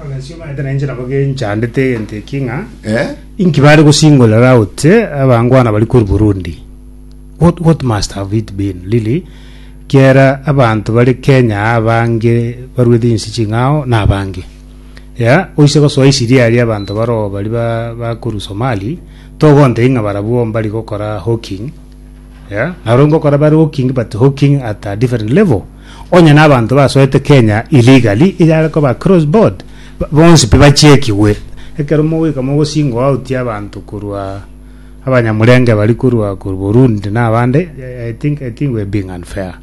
Abagaisio baete na inche nabo genchandete egento eki ng'a Eh? inki bare gosingorera out eh, abangwana bari kuri Burundi. What, what must have it been really? Kiera abanto bari Kenya aa abange barwete inse ching'ao na abange. Ya, oise gosoa isiri aria abanto baro bari ba, bakuru Somali, togontei ng'a barabwo mbari gokora hawking. Ya, naro ngokora bare hawking but hawking at a different level. Onye na abanto basoete Kenya illegally iga are koba cross board bonsi pi bachiekigwe ekero mogoika mogo single out abanto korwa abanyamurenge bari korwa korwa Burundi na abande I think I think we're being unfair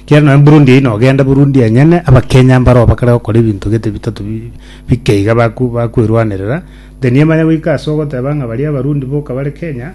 kero nonya Burundi eye nogende Burundi enyene abakenya mbaro bakare gokora ebinto gete bitato bi bike iga baku bakuerwanerera then emanye goika ase ogoteba ng'a baria abarundi boka bare Kenya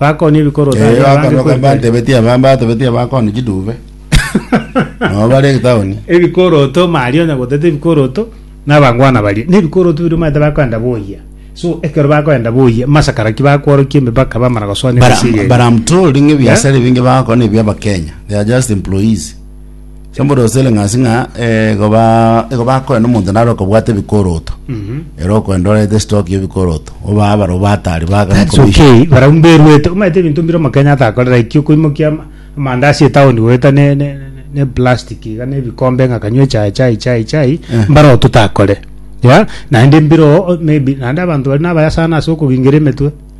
Bakonye bikoro Eh, tari abange bakanoka kweri kweri. batebeti aba batebeti aba koni chiduve nabo bare town ebikoroto maria onya gotete ebikoroto nabangwana baria na ebikoroto biria omanyete bakoenda boyia so ekero bakoenda boyia masakara ki bakworokia emepaka bamana gosoa But, nemichiga I'm- but eria. I'm told ng'e biasara ebinge bagakora nebi abakenya they are just employees Chimborose ere ng'asi ng'a eh, goba igo bakorana omonto naro okobwata ebikoroto ere okwenda orete stock y'ebikoroto oba abaro batari bagana That's commission. okay barau mberwete omanyete ebinto mbire omokenya atakorera ekio koimokia ama- amandazi etown goeta ne- ne- ne- ne plastic iga ne ebikombe ng'a kanywe chai chai chai chai Eh. mbaro totakore ya naende mbire oo maybe naende abanto bari nabayasana ase okogingera emetwe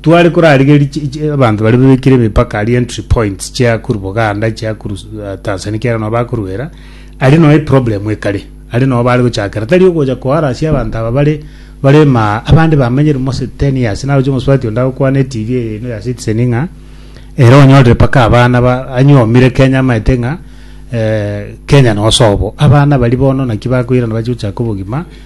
Tware korarigeria chi- chi- abanto baria bebekire emepaka aria entry points chiakuru Buganda chiakuru eh, Tanzania kiagera nabo bakoruera ari noe problem ekare ari noe bare gochakera tari ogocha koharasia abanto aba bare bare ma abande bamenyere mose 10 years naroche omosubati onde agokwana etv eye eno ya Citizen ng'a ere onyorire paka abana ba anyomire Kenya amaete ng'a eh, Kenya nosobo abana bari bono naki bakoirana bache gochaka obogima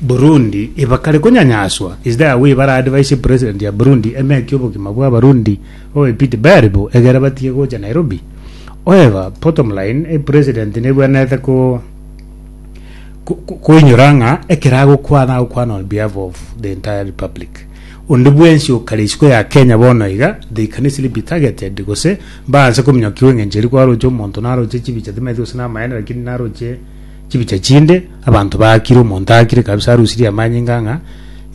Burundi ibakare konyanyaswa is there a way bara advise president ya Burundi emeki obogima bwa abarundi babe pity bari bo egere batige gocha Nairobi however bottom line eh, president nebwenerete ko koinyora ng'a ekero agokwana agokwana on behalf of the entire republic onde bwensi okare isiko ya Kenya bono iga they can easily be targeted gose baanse kominyokigwa eng'encho eri kwaroche omonto naroche chibicha timaeti gose namaene lakini naroche Chibicha chinde abanto baakire, omonto aakire kabisa arusirie amanyinga ng'a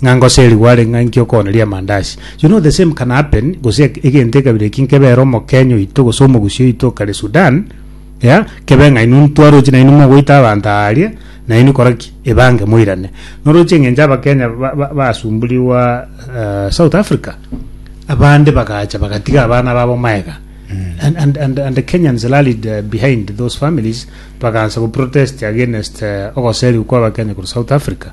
ng'a ngosa eri gware ng'a inki okooneria amandaasi. You know the same can happen gose eg- egento ekabira eki nkebere omokenya oito gose omogusii oito okare Sudan, yeah, kebe ng'a inwe ntwarochi nainwe mogoita abanto aaria, nainwe kora ki? Ebange moirane. Noroche eng'encho abakenya ba- ba- basumburigwa eh, South Africa, abande bagacha bagatiga abana babo magega. And, and, and, and the Kenyans rallied eh, behind those families bagaancha go protest against ogoserigwa kwa abakenya korwa south Africa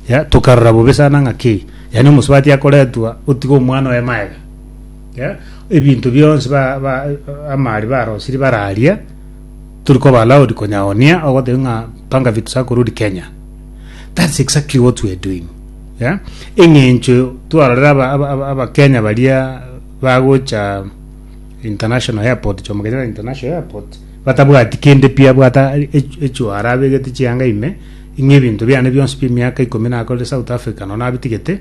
yeah tokarora bobe sana ng'aki yaani omosubati akoretwa otiga omwana oye maega yeah ebinto bionsi ba, ba, amari barosiri bararia turi koba allowed konyaonia ogoteba ng'a panga vitu sako rudi kenya that's exactly what we are doing yeah eng'encho twarorera aba- aba- aba- abakenya baria bagocha international airport jomo kenyatta international airport batabwati kende pi abwata echu echu are abegete chianga ime ing'e ebinto biane bionsi bie miaka ikomi nakorire south Africa no nabitigete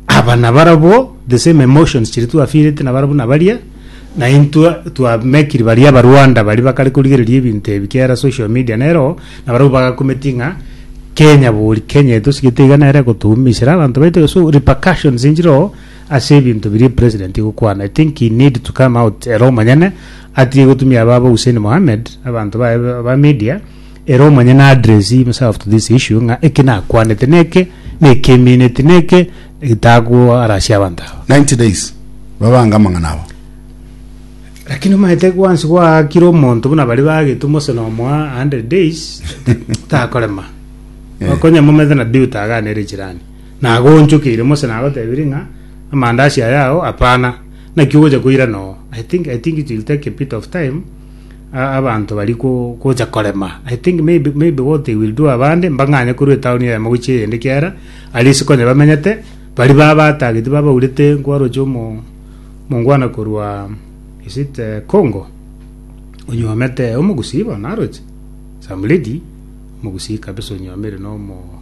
aba na barabo the same emotions chiri twafirete na barabwo na baria na intwe twa mekiri baria aba Rwanda bari bakare korigereria ebinto ebi kera social media nero na barabwo bagakometi ng'a Kenya bori Kenya eto sigete iga nere gotuumisera abanto baito so repercussions enchiro ase ebinto biria president gokwana I think he need to come out ere omonyene Atige gotumia ababo Hussein Mohammed, abanto baye ba media, ere omonyene a address himself to this issue ng'a eki nakwanete neke, neki emineti neke, gitagoa arasio abanto aba. 90 days babange amang'ana abo. Lakini omaete gwansi gwaakire omonto buna baria bagetwe Mose na omoa 100 days takorema. Eh. Konya momaete nabii otaganere chirani. Nagoonchokeire Mose nagotebirie ng'a amandaasi ayao hapana. Naki ogocha koirana oo, I think, I think it will take a bit of time, a- abanto bari go- gocha korema. I think maybe, maybe what they will do abande, mbang'anye korwa etaoni eyemo gochia eyende ekiagera, aria ase konya bamenyete, baria ba- batagete babaurete nkwaroche omo omongwana korwa, is it eh, Congo? onyuomete omogusii bono aroche some lady omogusii kabisa onywomire nomo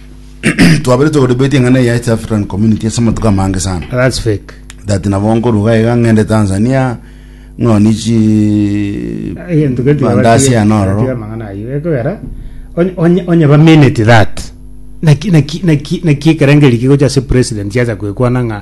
twaberetwe kodebate eng'ana eye ya East African Community ase amatuko amange sana That's fake. that nabo nkoruga iga ng'ende Tanzania ng'oni chi Egento gento bandasi ya nororo gatiga amang'ana ayio ekogera onye- onye- onye ba minute that naki naki naki naki ekerengeri kigocha ase president yacha kwekwana ng'a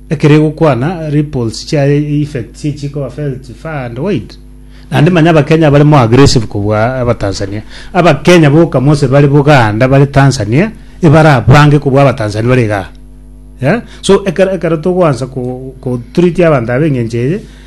Ekero egokwana ripples chiaye effects echi ekoba felt far and wide. Naende manya abakenya abare more aggressive kobua abatanzania. Abakenya boka mose bare Buganda bare Tanzania ebarabange kobua abatanzania bare igaa. Yeah? So ekero ekero togoansa ko ko treat abanto aba eng'encho eye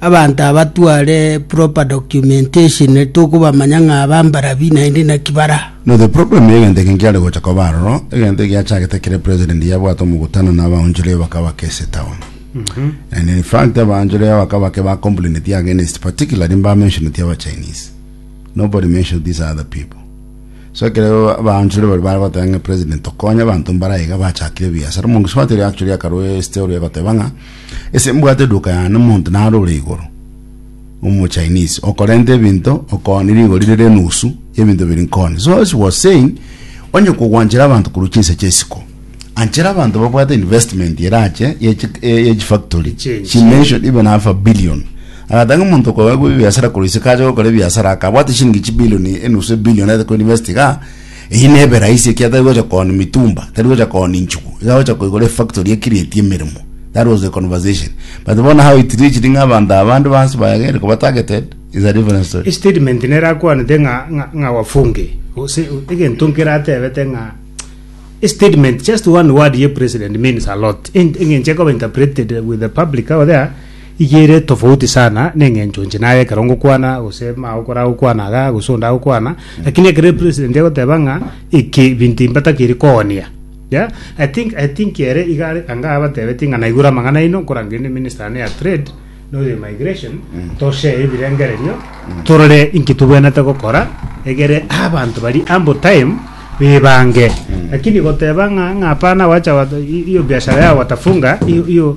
abanto abatware proper documentation tokobamanya ng'a aba mbarabi naende naki bara. No the problem ya egento eke nkiare gocha koba aroro, egento eke giachagete ekere president yabwate omogutano na abaonchoria bakaba case town. And in fact abaonchoria bakaba ke ba complaineti against particularly mba mentioneti aba Chinese. Nobody mentioned these other people. So ekero abaonchoria baria bare goteba ng'a president tokonye abanto mbare aiga bachakire ebiasara, omonto gose gwateba actually akarwa esite oria egoteba ng'a Ase mbwate duka yane omonto narore igoro, Omo-Chinese, okorenta ebinto okoni rigori rire enusu y'ebinto biri nkoni. So as he was saying, onye kogwanchera abanto korwa chinsa chi'esiko, anchera abanto babwate investment erache y'echi- eh, y'echifactory Eche- she mentioned even half a billion agatanga omonto okoegwa ebiasara korwa isiko ache gokora ebiasara aka abwate shilingi chibilioni enusu ebilioni aete koinvest iga Eyio nebe rahisi ekiagera tari gocha kooni mitumba, tari gocha kooni nchugu, iga gocha koigora efactory ekirieti emeremo. That was the conversation. But bono how it reached ng'a abanto aba bande bansi baegere koba targeted is a different story. Estatement nere akwanete ng'a ng'a ng'a wafunge gose egento nkere atebete ng'a estatement just one word ye president means a lot ent engenche ekoba interpreted with the public out there Eyio ere tofauti sana neng'encho inche naye ekero ngokwana gose mao kore agokwana igaa gose onde agokwana lakini ekero epresident egoteba ng'a eke ebinto ebi mbatakeri koonia yeah I think I think ere iga are anga abatebetie ng'a naigure amang'ana aino nkorangeria ne minister one ya trade na oyo emigration toshare ebirengererio torore inki tobwenerete gokora egere abanto baria ambo time bebange lakini goteba ng'a ng'a hapana wacha wata i- iyo biashara yao watafunga iyo iyo.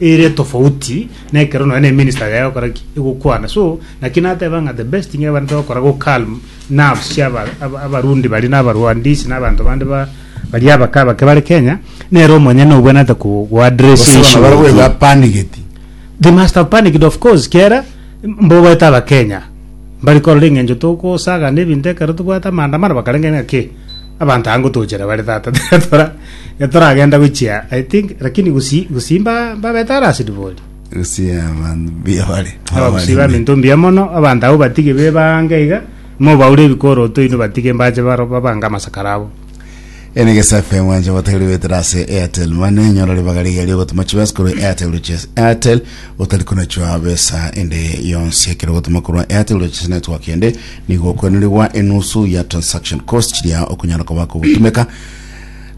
ere tofauti na ekero nonya na eminister yaye egokora ki egokwana so naki nateba ng'a the best thing ebarete gokora go calm nerves cia aba- aba- abarundi bari na abarwandisi na abanto bande ba bari abake abake bare kenya nere omonyene obwenerete ko go address Gose issue bono barabwo eye. bapanigeti they must have panicked of course kiera mbo baete abakenya mbari korora eng'encho tokosaga na ebinto ekero tobwate amaandamano bakarenge ng'a ki abanto aya ngotochera bare tata tora etoragenda gochia i think lakini gusi gusimba babeta arasidi bori Usia abantu bia bare. abagusiba minto mbuya mono abanto abo batige be bange iga mobaure ebikoroto ino batige mbache baro babange amasakara abo Ene gesa FM wanje wategeri wetera ase Airtel Money nyora ribaga riga riogotuma chibesa korwa Airtel Riches Airtel otari kunachwa besa ende yonsi ekero ogotuma korwa Airtel Riches Network ende Nigo okwenerigwa enusu ya transaction cost chiria okonyara koba kogotumeka.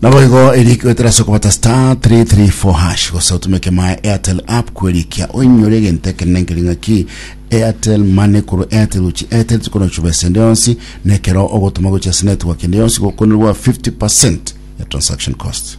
Naboigo eria ekigoetera ase okobata star 334 hash gose otumeke my Airtel app kwerikia oinyore egento ekenene nkeri ng'aki Airtel Money korwa Airtel gochia Airtel chikono chuba ase ende yonsi na ekero ogotuma gochia ase network ende yonsi gokwenerigwa 50% ya transaction cost.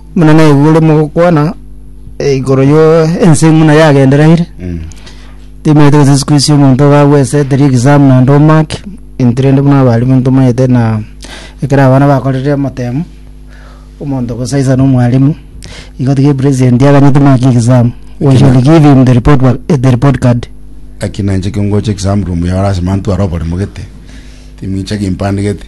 Buna naigure mogokwana eh, igoro yo ense ng'una yagenderaire Mm. timaete gose siku isi omonto iga agweseteri exam naende omake into rende buna abalimu ntomaete na ekero abana bakorire amatemo omonto gosaisa na omwalimu igo tiga president aganyete make exam we shall give him the report, wa- eh, the report card Aki nainche kingocha exam room yao lasima ntware oboremo gete timincha gimpande gete